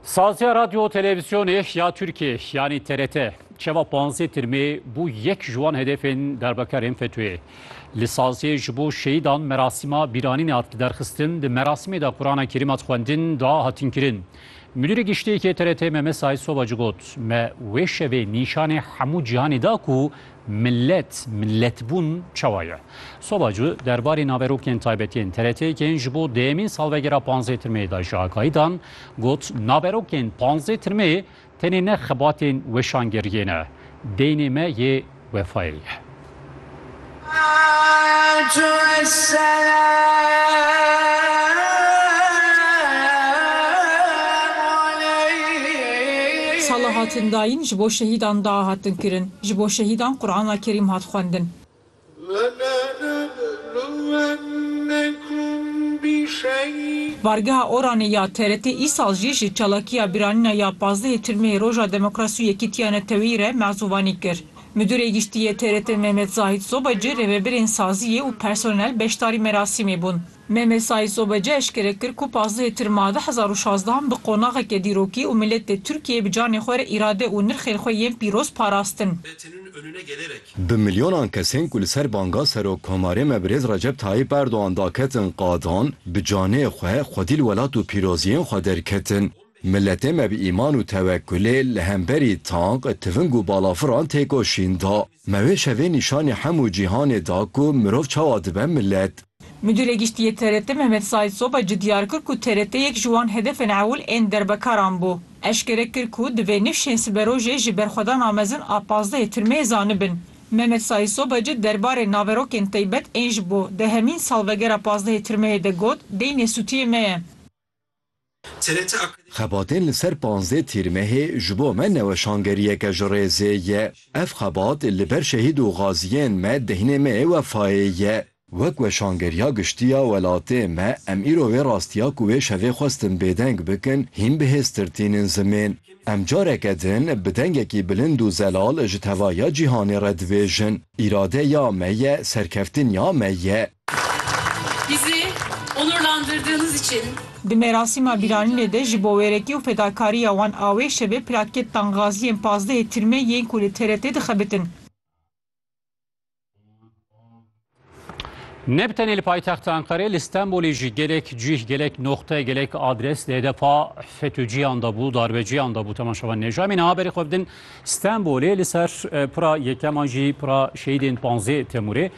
Sazya Radyo Televizyonê ya Türkiye yani TRT çeva panzê tirmê bû yek ji wan hedefên darbekarên FETÖ'yê. Li saziyê ji bo şehîdan merasîma bîranînê hat li derxistin di merasimê de Qurana Kerîm hat xwendin dua hatin kirin. Müdürê giştiyê yê TRT Mehmet Said Sobacı got me wê şevê nîşanê hemû cîhanê da ku Millet, milletbûn çawa ye? Soba cû derbarê naverokên taybetî yên TRT'ê ji bo dêyemîn salvegera panzdeh Tirmeyê de ji agahî dan, got, Naverokên panzdeh Tirmeyê tenê ne xebatên weşangeriyê ne, deynê me yê wefayê ye. Sala hatin dayîn ji bo şehîdan da hatin kirin. Ji bo şehîdan Qurana Kerîm hat xwendin. Bargeha Oranê ya TRT îsal jî ji çalakiya bîranîna ya pazdehê Tirmeyê Roja Demokrasî û Yekîtiya Neteweyî re mezûvanî kir. Midûrê Giştî yê TRT Mehmet Zahît Zobacî rêvebirên sazîyê û personel beşdarî merasîmê bûn. Mehmet Saîd Sobeci eşkere kir ku pazdehê Tirma du hezar û şazdehan bi qonaxeke dîrokî û miletê Tirkiyeyê bi canê xwe re îrade û nirxên xwe yên pîroz parastin. Bi milyonan kesên ku li ser banga Serokkomarê me Birêz Recep Tayîp Erdogan daketin qadan, bi canê xwe xwedî li welat û pîroziyên xwe derketin. Miletê me bi îman û tewekkulê li hemberî tank, tiving û balafiran têkoşîn da. Me wê şevê nîşanî hemû cîhanê da ku mirov çawa dibe milet. Mudîrê Giştî yê TRT Mehmet Saîd Soba ci diyar kir ku TRT yek ji wan hedefên ewil ên derbekaran bû. Eşkere kir ku divê nifşên siberojê ji berxwedana mezin a pazdehê tirmeyê zanibin. Mehmet Saîd Soba ci derbarê naverokên teybet ên ji bo dehemîn salvegera pazdehê tirmeyê de got, Deynê sûtiyê me ye. Xebatên li ser panzdeh Tîrmehê ji bo me ne weşangeriyeke ji rêzê ye. Ev xebat li ber şehîd û gaziyên me deynê me yê wefayê ye. Wek weşangeriya giştî ya welatê me em îro vê rastiya ku wê şevê xwestin bêdeng bikin hîn bihêztir tînin zimên. Em careke din bi dengekî bilind û zelal ji tevahiya cîhanê re dibêjin, Îrade ya me ye, serkeftin ya me ye. Bizi onurlandırdığınız için. Di merasîma bîranînê de ji bo wêrekî û fedakarîya wan a wê şevê plaketan Gaziyên Pazdehê Tirmê yên ku li TRT dixebitin. Ne bi tenê li paytexta Enqerê, li Stenbolê jî gelek cîh, gelek noxte, gelek adres di hedefa FETÖ'ciyan de bû, darbeciyan de bû temaşevan nêja. Em ê niha berê xwe bidin Stenbolê li ser pira yekem an jî pira şehîdên panzdeh Temûrê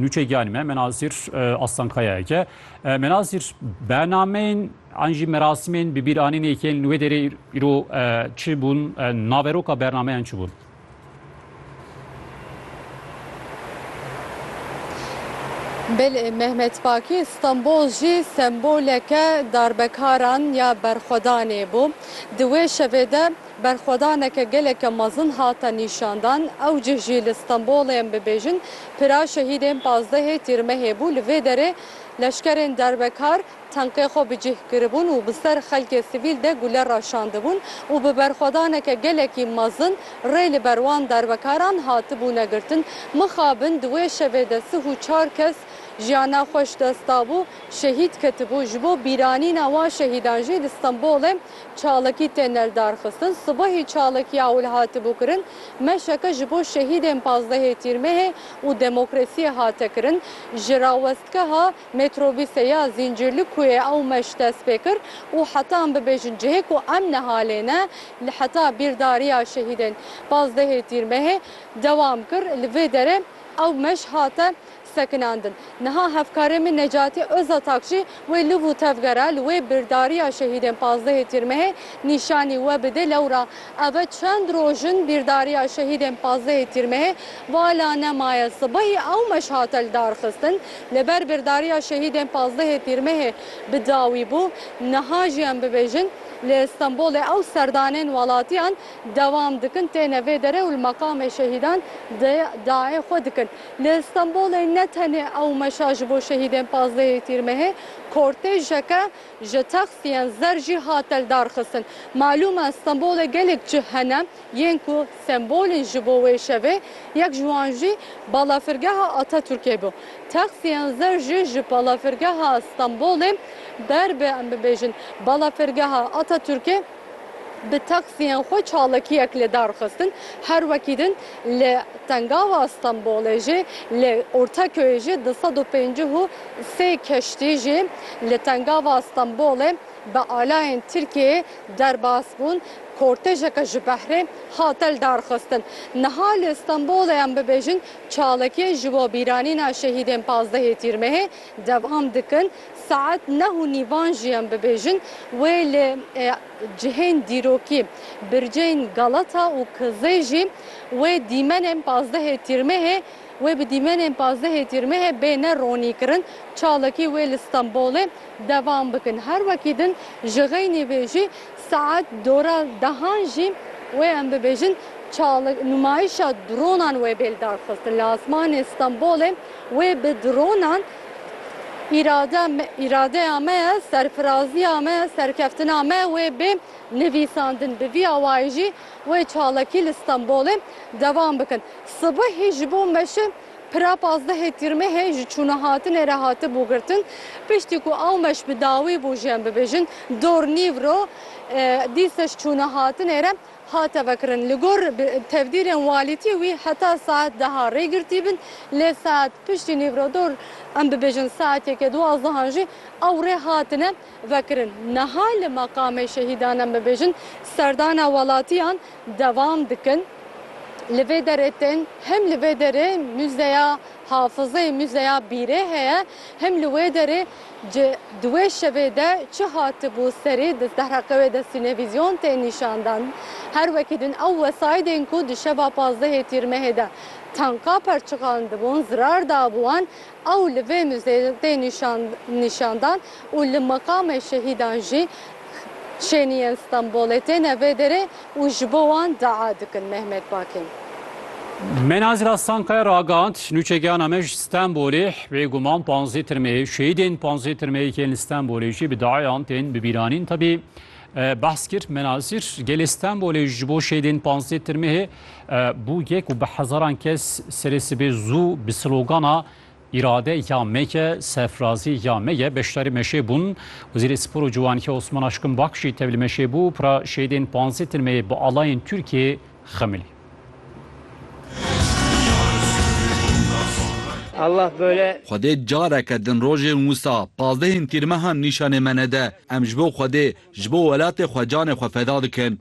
nûçe giyanê me Menazîr Aslankayayek e. Menazîr bernameyên an jî merasimên bi bîranînê yên li wê derê îro çi bûn? Naveroka bernameyan çi bûn? Belê Mehmet Pakî Stenbol jî semboleke darbekaran ya berxwedanê bû. Di wê şevê de Berxwedaneke geleke mezin hate nîşandan, ew cih jî li Stenbolê em bibêjin pira şehîdên pazdehê Tîrmehê bû. Li vê derê leşkerên derbekar tenqê xwe bi cih kiribûn û bi ser xelkê sivîl de gule raşandibûn û bi berxwedaneke gelekî mezin rê li ber wan derbekaran hatibûne girtin. Mixabin di wê şevê de sih û çar kes jiyana xwe ji dest dabû, şehîd ketibû. Ji bo bîranîna wan şehîdan jî li Stenbolê, çalakî tê neldarxistin. Sibehî çalakiya ewil hatibû kirin, meşeke ji bo şehîdên pazdehê Tîrmehê û demokrasiyê hate kirin. Ji rawestgeha metrobîsê ya Zîncîrlikuyê ew meş dest pê kir û heta em bibêjin cihê ku em niha lê ne, li heta bîrdariya şehîdên pazdehê Tîrmehê dewam kir. Li vê derê ew meş hate sekinandin. Niha hevkarê min Necatî Ozatak jî wê liv û tevgera li wê birdariya şehîdên pazdehê Tîrmehê nîşanî we bide lewra eve çend roj in bîrdariya şehîdên pazdehê Tîrmehê vala nemaye sibehî ewmeş hate lidarxistin li ber birdariya şehîdên pazdehê Tîrmehê bi dawî bû niha jî em bibêjin li Stenbolê ew serdanên welatiyan dewam dikin têne vê derê û li meqamê şehîdan de dayê xwe dikin. Li Stenbolê ne tenê ew meşa ji bo şehîdên pazdehê Tîrmehê, kortejeke ji taksiyên zer jî hate lidarxistin. Malûm e Stenbolê gelek cih hene yên ku sembol in ji bo wê şevê, yek ji wan jî balafirgeha Ataturkê bû. Taksiyên zer jî ji balafirgeha Stenbolê ber bi em bibêjin balafirgeha Ataturkê. bi taksiyên xwe çalakiyek li dar xistin, her wekî din li Tengava Stenbolê jî, li Ortaköyê jî du sed û pêncî û sê keştî jî li Tengava Stenbolê bi alayên Tirkiyeyê derbas bûn, kortejeke ji behrê hate li dar xistin. Niha li Stenbolê em bibêjin çalakiyê ji bo bîranîna şehîdên pazdehê Tîrmehê, Devam dikin, Saet neh û nîvan jî em bibêjin wê li cihên dîrokî, bircên Galata û Kizey jî wê dîmenên pazdehê Tîrmehê wê bi dîmenên pazdehê Tîrmehê bêne ronîkirin, çalakî wê li Stenbolê devam bikin. Her wekî din ji xeynî vê jî saet dora dehan jî wê em bibêjin çal nûmayîşa dronan wê bê lidarxistin li asmanê Stenbolê. Wê bi dronan îrade îradeya me ye, serfiraziya me, serkeftina me wê bê nivîsandin. Bi vî awayî jî wê çalakî li Stenbolê devam bikin. Sibihî ji bo meşin pira pazdehê Tîrmehê ji çûnehatinê re hatibû girtin. Piştî ku ew meş bi dawî bû ji em bibêjin dor nîvro dîseş çûnehatinê re hate vekirin. Li gor tevdîrên walîtî wî heta saet deha rê girtîbin lê saet piştî nîvrodor em bibêjin saet yekê duwazehan jî ew rê hatine vekirin. Niha li Meqamê Şehîdan em bibêjin serdana welatiyan devam dikin. Li vê derê tên hem li vê derê muzeya hafizê, muzeya bîrê heye hem li wê derê, Ji di wê şevê de çi hatibû serê di Sehreqewê de Sînevîzyon tê nîşandan. Her wekî din ew wesaîdên ku di şeva pazdehê Tîrmehê de tanka perçiqandibûn zirar dabû wan ew li vê muzeyê de tê nîşandan û li meqamê şehîdan jî Şêniyên Stenbolê têne vê derê û ji bo wan dua dikin. Mehmet Bakên. Menazîr Aslankaya ragihand, Nûçegihana me ji Stenbolê bêguman panzdeh tirmeyê şehîdên panzdeh tirmeyekên li Stenbolê jî bi duayan tên bibîranîn. Tevî behs kir Menazîr, gelê Stenbolê ji bo şehîdên panzdeh tirmeyê bû yek û bi hezaran kes serê sibê zû bi slogana Îrade ya me ye, sefrazî ya me ye, beşdarî meşê bûn. Wezîrê Spor û Ciwanî Osman Aşkın Bak jî tevlî meşê bû û pira şehîdên panzdeh tirmeyê bi alayên Tirkiyê xemilî. Allah böyle. Xwedê careke din rojên wisa pazdehên tîrmehan nîşanê me nede. Em ji bo Xwedê, ji bo welatê xwe canê xwe feda dikin.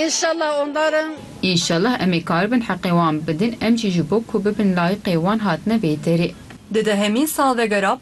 Înşallah ondar in. Înşallah em ê karibin heqê wan bidin, em jî ji bo ku bibin layiqê wan hatine vê derê. Di dehemîn salvegera